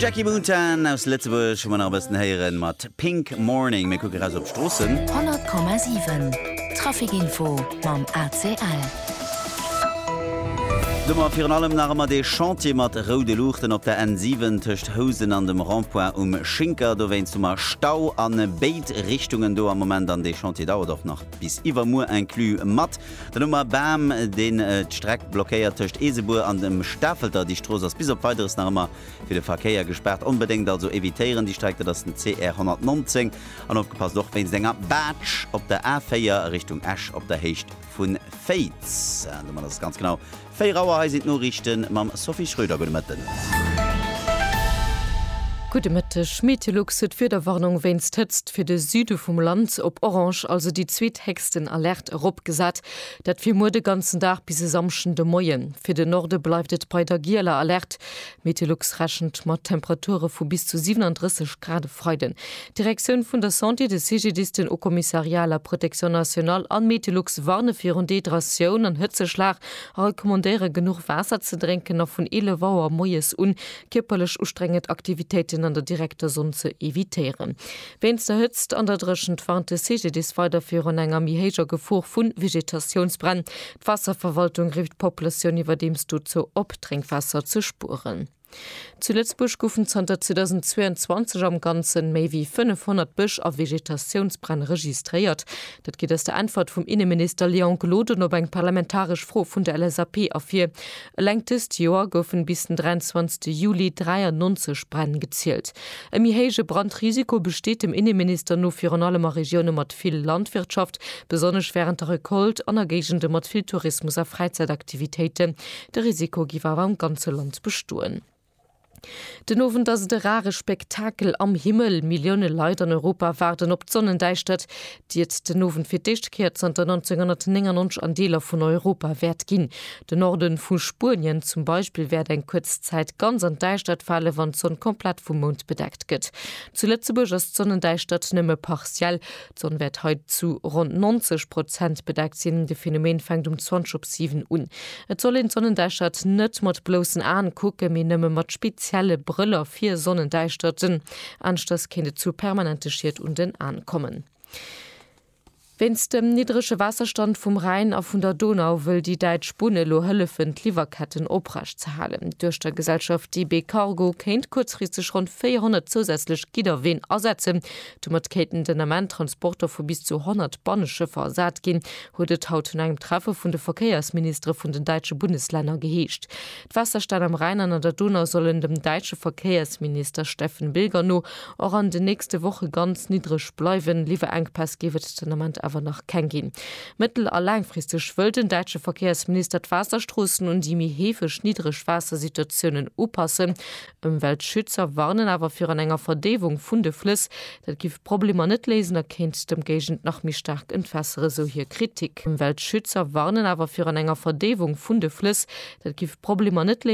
Jackie Mountain aus Lëtzebuerg hu mer nach e bëssen héieren mat Pink Morning. Mir kucke raus op d'Stroossen. 100,7 Trafic Info mam ACL. Domat virun allem nach ëmmer dee Chantier mat roude Luuchten op der N7 tëscht Housen an dem Rond-point um Schinker. Dowéinst hu mer Stau a béid Richtungen do am Moment an dee Chantier dauert och nach bis iwwermuer inclus mat. Den Oumar Bam, deen d'Streck blockéiert tëscht Eesebuer an dem Stafelter. Déi Strooss ass bis op Weideres nach ëmmer fir de Verkéier gespaart. Onbedéngt also evitéieren déi Streck, dat ass den CR 119. An opgepasst och wéinst enger Baatsch op der A4 a Richtung Esch op der Héicht vu Féiz. Domat ass et ganz genau 4 Auer, hei sinn d'Noriichte mam Sophie Schröder. Gudde Mëtten. Gudde Mëtteg. Meteolux huet d'Wiederwarnung wéinst Hëtzt fir de Süde vum Land op orange, also déi zweethéchsten Alerte, eropgesat. Dat fir muer de ganzen Dag bis e Samschden de Moien. Fir de Norde bleift et bei der gieler Alerte. D'Meteolux rechent mat Temperature vu bis zu 37 Grad e Freiden. D'Direktioun vun der Santé, de CGDIS, den Haut-Commissariat à la Protection Nationale an d'Meteolux warne virun Dehydratioun an Hëtzeschlag a recommandéiere genuch Waasser ze drénken a vun 11 Auer moies un kierperlech ustrengend Aktivitéiten an der direkter Sonn ze evitéieren. Wéinst der Hëtzt an der Dréchent warnt de CGDIS weider virun enger méi héijer Gefor vu Vegetatiounsbränn. D'Waasserverwaltung rifft d'Populatioun iwwerdeems dozou op, Drénkwaasser ze spueren. Zu Lëtzebuerg goufen zanter 2022 am Ganze méi wéi 500 Bësch a Vegetatiounsbränn registréiert. Dat geet aus der Äntwert vum Inneminister Léon Gloden op eng parlamentaresch Fro vun der LSAP ervir. Eleng dëst Joer goufen bis den 23 Juli 93 Bränn gezielt. E méi héije Brandrisiko besteet dem Inneminister no virun allem a Regioune mat vill Landwirtschaft, besonnesch wärend der Recolte, an a Géigende mat vill Tourismus a Fräizäitaktivitéiten. De Risiko géif awer am ganze Land bestoen. Den Owend ass et e rare Spektakel am Himmel, Millioune Leit an Europa waarden op d'Sonnendäischtert, déi et den Owend fir d'éischt Kéier zanter 1999 an Deeler vun Europa wäert ginn. De Norde vu Spuenien zum Beispill wäert eng kuerz Zäit ganz an d'Däischtert fale wann d'Sonn komplett vum Mound bedeckt gëtt. Zu Lëtzebuerg ass d'Sonnendäischtert nëmme partiell, D'Sonn wäert hei zu ronn 90 Prozent bedeckt sinn. De Phänomen fänkt um 20 op 7 un. Et soll een d'Sonnendäischtert net mat bloussen Aen kucken, mee nëmme mat spezielle Brëller fir Sonnendäischterten, aneschters kéint et zu permanente Schied un den Aen kommen. Wéinst dem niddrege Waasserstand vum Rhäin a vun der Donau wëll déi däitsch Bunn elo hëllefen, d'Liwwerketten oprecht ze halen. Duerch der Gesellschaft DB Cargo kéint kuerzfristeg ronn 400 zousätzlech Gidderween asetzen, Domat kéinten den Ament Transporter vu bis zu 100 Banneschëffer ersat ginn, huet et haut no engem Treffe vun de Verkéiersministere vun den däitsche Bundeslänner geheescht. D'Waasserstänn am Rhäin an an der Donau sollen dem däitsche Verkéiersminister Steffen Bilger no och an den nächste Woche ganz niddreg bleiwen. Liwwerenkpäss géif et den Ament awer nach keng ginn. Mëttel a laangfristeg wëll den däitsche Verkéiersminister d'Waasserstroossen un déi méi heefeg Niddregwaassersituatiounen upassen. Ëmweltschützer warnen awer virun enger Verdeewung vun de Flëss. Dat giff d'Problemer net léisen a kéint d'Ëmgéigend nach méi staark entwässere, sou hir Kritik. Ëmweltschützer warnen awer virun enger Verdeewung vun de Flëss. Dat giff d'Problemer net.